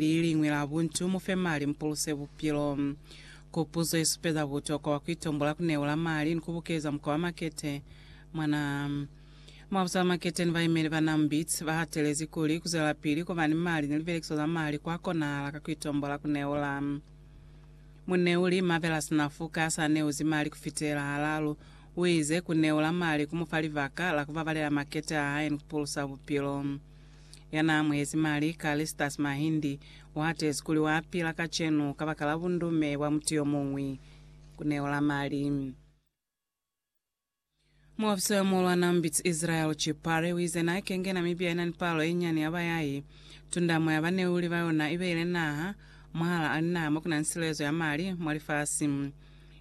leliñwi la buntu, mu fe mali, mu puluse bupilo. Kupuzo ye supeza butokwa bwa ku itombola ku neula mali ni ku bukeza mukwa wa makete. Mwana mwa busa bwa makete ni baimeli ba NAMBIT ba hatelezi kuli, ku zwelapili ku ba ni mali ni lipelekiso za mali kwa konahala ka ku itombola ku neula. Muneuli Marvelous Nafuka ya sa neuzi mali ku fitela halalu, u ize, Ku neula mali ku mu fa libaka la ku babalela makete a hae ni ku pulusa bupilo. ya n'a amuhezi mali, Callistus Mahindi, wa atezi kuli wa pila kacenu kabakala bundume bwa mutu yo muñwi ku neola mali. Muofisa yo muhulwana Mbitsi Israel Chipare uize n'a kenge Namibia ina ni palo ye nyani ya bayai, tundamo ya baneuli ba yona ibeile naha mwahal'a linaha mo kuna ni silezo ya mali mwa lifasi.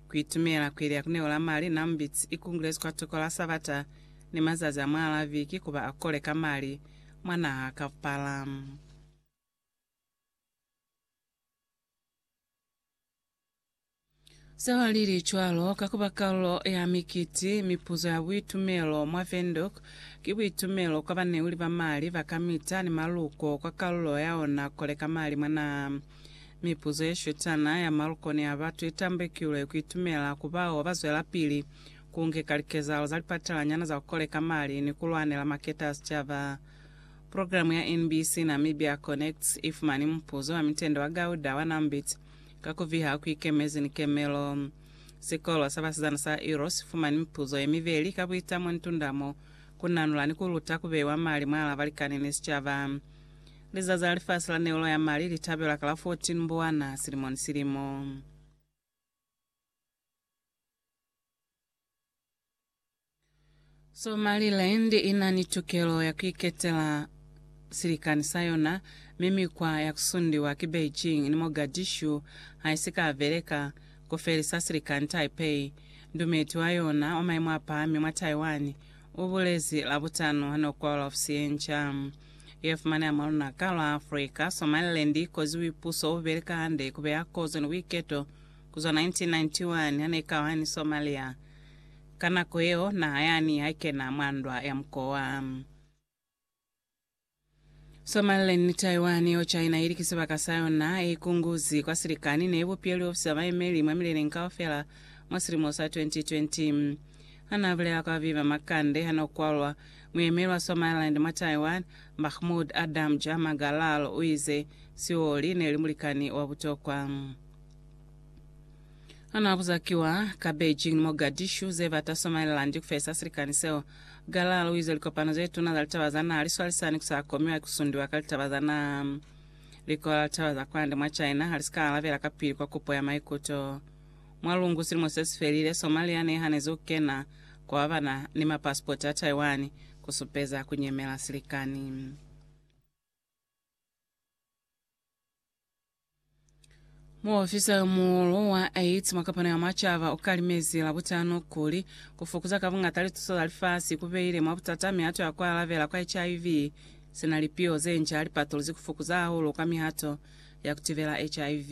Ku itumela ku ili ya ku neola mali n'a Mbitsi ikungulezi kwa toko la Sabata, ni mazazi a mwaala viki kuba a kole ka mali mwa naha kaupala. Seo li li cwalo ka kuba kalulo ya mikiti mipuzo ya buitumelo mwa Windhoek ki buitumelo kwa baneuli ba mali ba kamita ni maluko kwa kalulo ya ona kole ka mali mwa naha. Mipuzo ye shutana ya maluko ni ya batu i tambekilwe ku itumela ku bao ba zwelapili ku ngeka likezahalo za lipatelanyana za ku koleka mali ni ku lwanela maketa a sicaba. Programe ya NBC Namibia Connects i fumani mupuzo wa mitende wa Gauda wa Nambit ka ku viha ku ikemezi ni kemelo. Sikolo sa basizana sa Iro si fumani mipuzo ye mibeli ka buitamo ni tundamo, ku nanula ni ku luta ku beiwa mali mwalaa balikani ni sicaba. Lizazi la Lifasi la Neulo ya Mali li tabelwa ka la 14 Mbuwana silimo ni silimo. Somaliland i na ni tukelo ya ku iketela silikani sa yona, mi mikwa ya ku sundiwa ki Beijing ni Mogadishu ha i si ka beleka. Ku felisa silikani Taipei, ndumeti wa yona wa maimo a pahami mwa Taiwan, u bulezi Labutano ha no kwalula ofisi ye nca ye fumaneha mwa lunaka lwa Africa. Somaliland i koziwi puso u beleka hande ku beya kozo ni buiketo ku zwa 1991 ha ne ka ba ni Somalia. Ka nako yeo, naha yani ha i kena mwa ndwa ya mukowa. Somaliland ni Taiwan, yeo China ili ki sibaka sa yona, e ikunguzi kwa silikani, ne i bupilwe liofisi za bayemeli mwa mileleng kaufela mwa silimo sa 2020. Ha n'a bulela kwa Viva Makande ha n'o kwalwa, muyemeli wa Somaliland mwa Taiwan, Mahmood Adam Jama Galal u ize, Sioli ne li mulikani wa butokwa. Anaabuza kiwa ka Beijing ni Mogadishu zebata Somaliland kufesa silikani seo. Galal uize likopano zetuna za litaba za naha liswalisani kusakomiwa ikusundiwa ka litaba za naha. Likola la litaba za kwande mwa China halisika alabela kapili kwa kupo ya maikuto. Mwa lungu silimo sesifelile, Somalia nehanezi kukena kwa babana ni mapasipoti a Taiwan kusupeza kunyemela silikani. Muofisa yo muhulu wa AIDS mwa kapano ya macaba u kalimezi Labutano kuli, Ku fokuza ka buñata lituso za lifasi ku beile mwa butata mihato ya ku alabela kwa HIV, sina lipiho ze nca li patuluzi ku fokuza hahulu kwa mihato ya ku tibela HIV.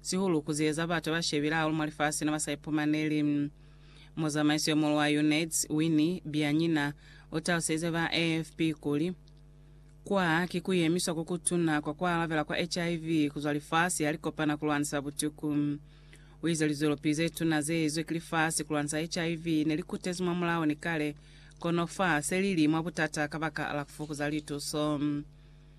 sihulu ku zieza batu ba shebile hahulu mwa lifasi ne ba sa ipumaneli. Muzamaiso yo muhulu wa UNAIDS, Winnie Byanyima, u talusize ba AFP kuli, Kwa ki ku yemiswa ku kutuna kwa ku alabela kwa HIV ku zwa lifasi ha li kopana ku lwanisa butuku. U ize lizwelopilu ze tuna ze ezwe ki lifasi ku lwanisa HIV ne li kutezi mwa mulao ni kale, kono fa se li li mwa butata kabakala ku fukuza lituso.